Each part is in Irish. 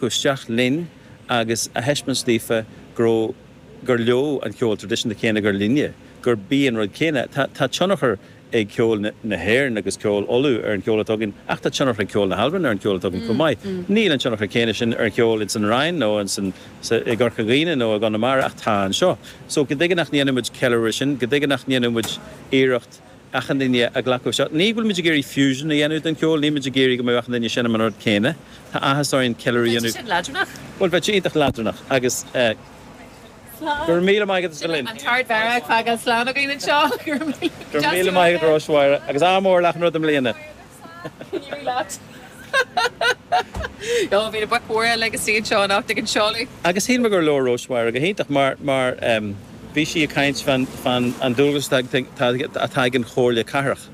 isteach linn agus a thaispeáint daoithe go raibh, gur leo an ceol tradisiúnta céanna gur linne, gurb é an rud céanna. Tá, tá tionchar ag ceol na hÉireann agus ceol Uladh ar an cheol atá againn ach tá tionchar ag ceol na hAlban ar an cheol atá againn chomh maith. Níl an tionchar céanna sin ar an cheol ins an Rinn nó ins an, sa, i gCorca Dhuibhne nó i gConamara ach tá anseo. So, cad chuige nach ndéanann muid ceiliúradh air sin, cad chuige nach ndéanann muid iarracht, achan duine a ghlacadh anseo. Ní go bhfuil muid ag iarraidh fusion a dhéanamh den cheol, níl muid ag iarraidh go mbeadh achan duine ag seinm an rud céanna. Tá áthas orainn ceiliúradh a dhéanamh. Bheadh sé sin leadránach. Bhuel, bheadh sé iontach leadránach agus Slán. Go raibh míle maith agat as Sin é, Berlin. an tArdmheara ag fágáil slán againn anseo. Go raibh míle maith agat. Go raibh míle maith agat, a Róis Mháire, agus ádh mór le achan rud i mbliana. Can you relate? Ó, bhí na boic mhóra uilig ina suí anseo anocht ag an seoladh. Agus shíl mé gur labhair Róis-Mháire go hiontach mar, mar em, bhí sí ag caint fan, fan an dualgas atá, atá, atá ag an Chomhairle Cathrach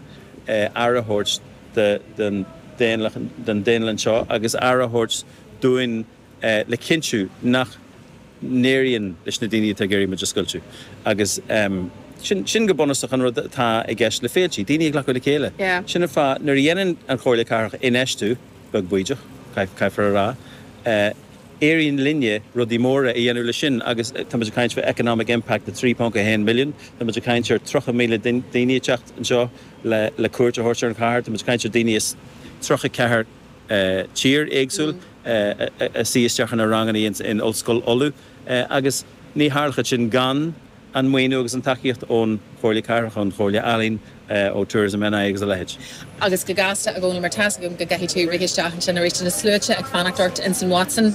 eh, aire a thabhairt do, don daonlathas, don daonlathas anseo agus aire a thabhairt dúinn, le cinntiú nach n-éiríonn leis na daoine atá ag iarraidh muid a scoiltiú agus sin, sin go bunúsach an rud atá i gceist le féilte, daoine a ghlacadh le chéile. Sin an fáth, nuair a dhéanann an Chomhairle Cathrach infheistiú, beag baoideach, caithfear a rá, éiríonn linne rudaí móra a dhéanamh leis sin agus tá muid ag caint faoi economic impact 3.1 million, tá muid ag caint ar 30,000 duine, daoine ag teacht anseo le cuairt a thabhairt ar an chathair, tá muid ag caint ar daoine as 34 tír éagsúil ag suí isteach sna ranganna in Ollscoil Uladh agus ní tharlóchadh sin gan an maoiniú agus an tacaíocht ón Chomhairle Cathrach, ón Chomhairle Ealaíon, ó Tourism NI agus a leitheid. Agus go gasta i gcónaí mar tá's agam go gcaithfidh tú rith isteach ansin aríst, na sluaite ag fanacht ort insan Watson.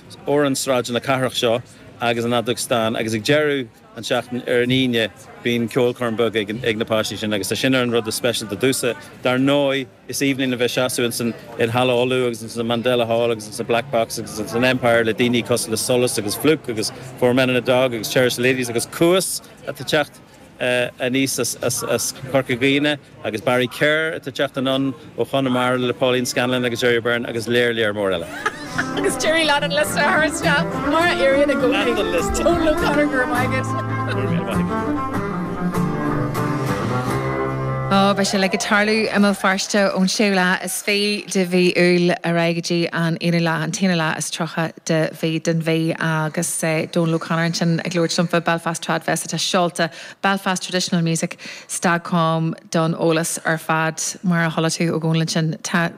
ar shráideanna na cathrach seo agus an fheadóg stáin agus ag deireadh an tseachtain ar an Aoine bíonn ceolchoirm beag ag na páistí sin agus tá sin ar an rud is speisialta domhsa. Dar ndóigh is aoibhinn a bheith i mo sheasamh ins an, i Halla Uladh agus ins an Mandela Hall agus ins an Black Box agus ins an Empire le daoine cosúil le Solas agus Flook agus Four Men and a Dog agus Cherish the Ladies agus Cuas atá ag teacht aníos as Corca Dhuibhne agus Barry Kerr atá ag teacht anonn ó Chonamara le Pauline Scanlon agus Gerry Byrne agus lear, lear mór eile. Agus Gerry lean an liosta thar isteach mar a éiríonn i gcónaí. Donal O'Connor go raibh maith agat. Ó beidh sé uilig ag tarlú i mBéal Feirste ón séú lá is fiche de mhí Iúil ar aghaidh go dtí an aonú lá, an t-aonú lá is tríocha. den mhí, den mhí agus Donal O'Connor ansin ag labhairt liom fá Belfast Trad Fest atá seolta, Belfast Traditional Music dot com don eolas ar fad. Mar a chuala tú ó Dhónal ansin tá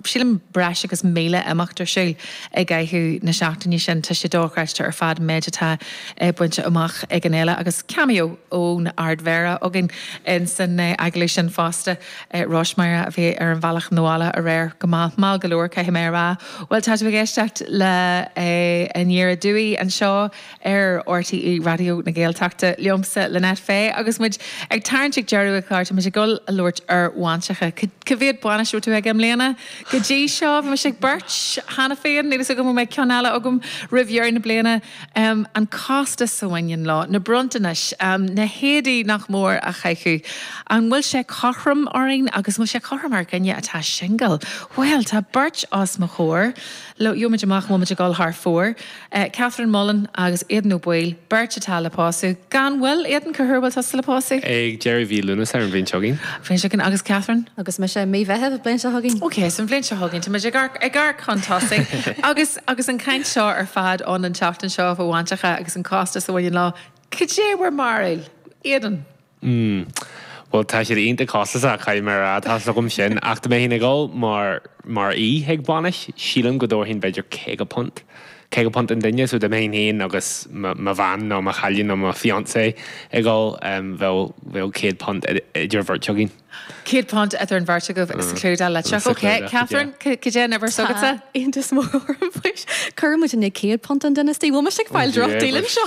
sílim breis agus míle imeacht ar siúl i gcaitheamh na seachtaine sin. Tá sé dochreidte ar fad an méid atá bainte amach ag an fhéile agus cameo ón Ardmhéara againn insan agallamh sin fosta. Rois Máire a bhí ar an bhealach 'na bhaile aréir. Go maith. Maith go leor, caithfidh mé a rá. Bhuel, tá tú ag éisteacht le An Iarraidh Dúigh anseo ar RTÉ Raidió na Gaeltachta liomsa, Lynette Fay, agus muid ag tarraingt ag deireadh an chláir. Tá muid ag dul a labhairt ar bhainseacha. Cá mhéad bainis a raibh tú aige i mbliana? Go dtí seo bhí mise ag beirt cheana féin, níl fhios agam an mbeidh ceann eile agam roimh dheireadh na bliana. An costas a bhaineann leo, na bronntanais, na héadaí nach mór a chaitheamh, an bhfuil sé cothrom orainn agus an bhfuil sé cothrom ar dhuine atá singil? Bhuel, tá beirt os mo chomhair, gheobhaidh muid amach an bhfuil muid ag dul thar fóir, Catherine Mullan agus Aidan Ó Baoill, beirt atá le pósadh, gan mhoill! Aidan, cá huair a bhfuil tusa le pósadh? Ag deireadh mhí Lúnasa, ar an bhliain seo chugainn. Bhliain seo chugainn, agus Catherine? Agus mise, mí Mheithimh, bhliain seo chugainn. Ok, so an bhliain seo chugainn, tá muid ag amharc chun tosaigh agus. Agus an chaint seo ar fad ann an tseachtain seo faoi bhainseacha agus an costas a bhaineann leo, cad é bhur mbarúil? Aidan? Bhuel, tá siad iontach costasach, caithfidh mé a rá. Tá a fhios agam sin. Ach dá mbeinn ag dul mar mar aoi chuig bainis, sílim go dtabharfainn b'fhéidir caoga punt. Caoga punt an duine. So dá mbeinn féin agus mo bhean nó mo chailín nó mo fiancée ag dul, bheadh céad punt idir an bheirt againn. Céad punt idir an bheirt agaibh sa chlúdach litreach. Ok, Catherine, cad é an uimhir s'agatsa? Tá iontas mór orm faoi. Cuireann muidinne céad punt an duine istigh. Bhuel, mise ag fáil droch deal anseo.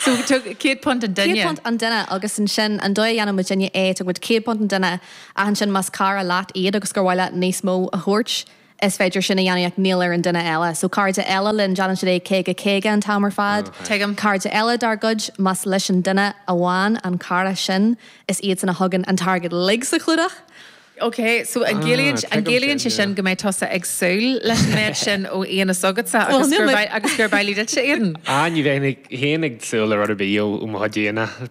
So tugadh céad punt an duine? Céad punt an duine agus ansin an dóigh a dhéanann muidinne é, tugann muid céad punt an duine ach ansin más cara leat iad agus gur mhaith leat níos mó a thabhairt, Is féidir sin a dhéanamh ach níl ar an duine eile. So cairde eile linn, déanann siad é caoga caoga an t-am ar fad. Tuigim. Cairde eile dár gcuid, más leis an duine amháin an cara sin, is iadsan a thugann an t-airgead uilig sa chlúdach! Ok, so an gciallaíonn, an gciallaíonn sé sin go mbeidh tusa ag súil leis an méid sin ó aíonna s'agatsa agus gur, agus gurb amhlaidh duitse, Aidan? Ah, ní bheinn ag, fhéin ag súil le rud ar bith ó mo chuid aíonna.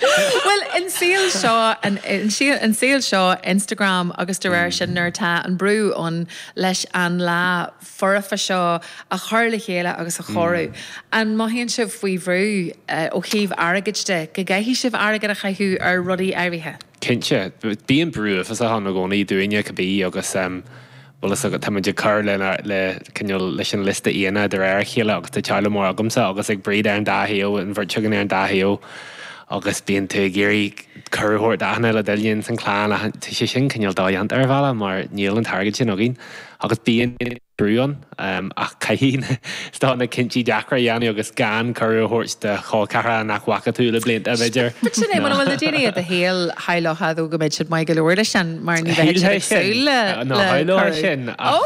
Bhuel, an saol seo, an saol seo Instagram agus de réir sin nuair atá an brú ann leis an lá foirfe seo a chur le chéile agus a chóiriú, an mothaíonn sibh faoi bhrú ó thaobh airgid de, go gcaithfidh sibh airgead a chaitheamh ar rudaí áirithe? Cinnte. Bíonn brú uafásach ann i gcónaí, dúinne, cibé, agus. bhfuil fhios agat, tá muid ag cur le, le, cineál, leis an liosta aíonna de réir a chéile agus tá teaghlach mór agamsa agus ag Bríd ar an dá thaobh, an bheirt againn ar an dá thaobh agus bíonn tú ag iarraidh cuireadh a thabhairt d'achan uile dhuine ins an chlann ach tá sé sin cineál dodhéanta ar bhealach mar níl an t-airgead sin againn agus bíonn brú ann ach caithfidh tú na cinntí deacra a dhéanamh agus gan cuireadh a thabhairt do chol ceathracha nach bhfaca tú le blianta b'fhéidir. But sin é, mura bhfuil na daoine i do shaol shamhlóchadh tú go mbeadh siad maith go leor leis sin mar ní bheadh siad ag súil le Shamhlóchá sin ach Ó!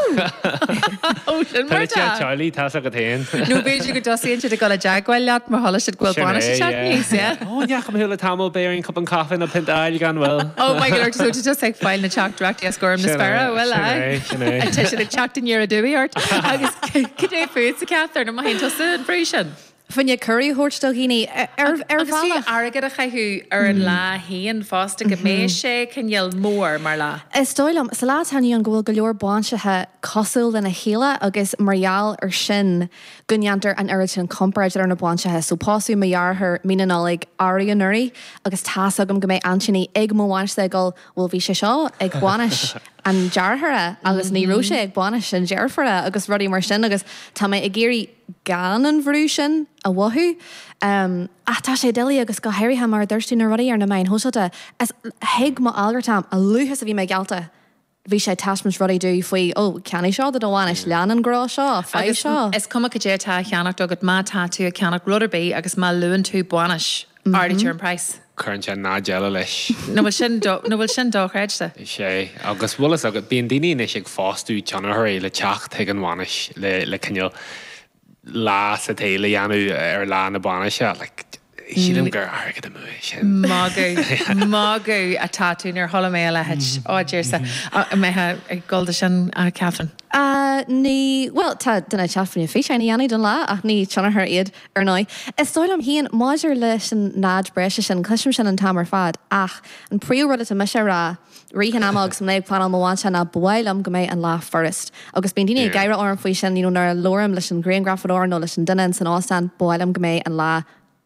Ó! Sin mar atá sé teaghlaigh, tá's agat féin. Nó b'fhéidir go dtosaíonn siad ag dul i dteagmháil leat mar chuala siad go bhfuil Sin é, bainis ag teacht yeah. aníos, yeah? Ó, ní fhaca mé thú le tamall, b'fhéarr an cupán caife ná pint a fháil gan mhoill. Oh my good lord, so tú just ag fáil na teacht directly as Gorm na Sin é, Spera, bhuel sin aye. é, sin é. Tá siad ag teacht aniar aduaidh ort. Agus cad é fútsa a Catherine an mothaíonn tusa an bhrú sin? Faoin chuireadh a thabhairt do dhaoine ar ar Agus ar bhealach. airgead a chaitheamh ar an lá fhéin fosta go mbeidh sé cineál mór mar lá. Is dóigh liom, sa lá atá inniu ann, go bhfuil go leor bainseacha cosúil lena chéile agus mar gheall ar sin go ndéantar an oiread sin comparáid idir na bainseacha so pósadh mo dheartháir mí na Nollag arú anuraidh agus tá's agam go mbeidh aintíní ag mo bhainis-se ag gol bhuel bhí sé seo ag bainis an dearthára agus ní raibh sé ag bainis an deirfiúra agus rudaí mar sin agus tá mé ag iarraidh gan an bhrú sin a mhothú ach tá sé doiligh agus go háirithe mar a dúirt tú na rudaí ar na meáin shóisialta is thuig mo algartam a luaithe is a bhí mé geallta bhí sé ag taispeáint rudaí domh faoi, ó, ceannaigh seo do do bhainis, lean an grá seo, faigh seo. Agus is cuma cad é atá á cheannacht agat, má tá tú ag ceannacht rud ar bith agus má luann tú bainis, ardaítear an price. cuireann sé náid eile leis. Nó bhfuil sin nó bhfuil sin dochreidte? Is é. Agus bhfuil fhios agat, bíonn daoine anois ag fostú tionchairí le teacht chuig an bhainis le le cineál, lá sa tsaol a dhéanamh ar lá na bainise. Sílim gur airgead amú é sin. Magadh, magadh atá tú, níor chuala mé a leithéid, á Dhia-sa, an mbeifeá ag dul dó sin a Catherine? Á ní, bhuel tá duine ag teacht físeáin a dhéanamh don lá ach ní tionchaire iad ar ndóigh. Is dóigh liom féin maidir leis an náid breise sin, cloisim sin an t-am ar fad ach an príomhrud atá mise a rá, rith an ama agus mé ag pleanáil mo bhainse ná ba mhaith liom go mbeidh an lá furast. Agus bíonn daoine ag gáire orm faoi sin you know nuair a labhraím leis an ghrianghrafadóir nó leis an duine in san óstán, ba mhaith liom go mbeidh an lá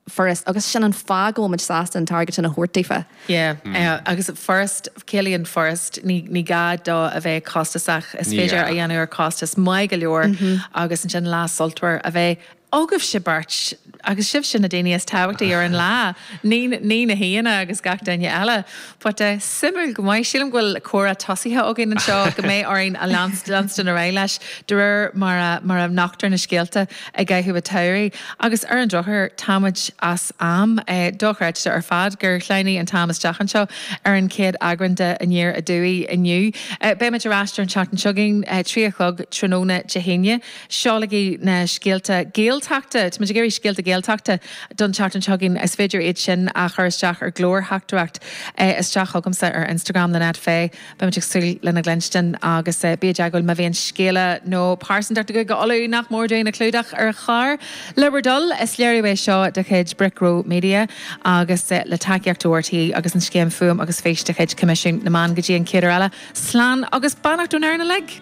furast agus sin an fáth go bhfuil muid sásta an t-airgead sin a thabhairt daofa. Yeah, agus furast, ciallaíonn furast, ní ní gá dó a bheith costasach, is féidir a dhéanamh ar chostas maith go leor agus ansin lá sultmhar a bheith. Ó agaibhse beirt, agus sibhse na daoine is tábhachtaí ar an lá, ní na haíonna agus gach duine eile, but eh suimiúil go maith, sílim go bhfuil comhrá tosaithe againn anseo go mbeidh orainn a leanstan ar aghaidh leis de réir mar a mar a nochtar na scéalta i gcaitheamh a tsamhraidh agus ar an drochuair táimid as am. Eh dochreidte ar fad gur shleamhnaigh an t-am isteach anseo ar an chéad eagrán de Aniar Aduaidh inniu. Eh beimid ar ais ar an tseachtain seo chugainn, trí a chlog tráthnóna Dé hAoine. Seolaigí na scéalta Gaeltachta, táimid ag iarraidh scéalta Gaeltachta don tseachtain seo chugainn. Is féidir iad sin a chur isteach ar glórtheachtaireacht isteach chugamsa ar Instagram, Lynette Fay. Beimid ag súil lena gcluinstin agus bígí i dteagmháil má bhíonn scéala nó pearsantacht i gCúige Uladh nach mór dúinn a chlúdach ar chlár le bhur dtoil. Is léiriú é seo de chuid Brick Row Media agus le tacaíocht ó RTÉ agus an scéim Fuaim agus Fís de chuid Choimisiún na Meán. Go dtí an chéad uair eile, slán agus beannacht ón fhoireann uilig.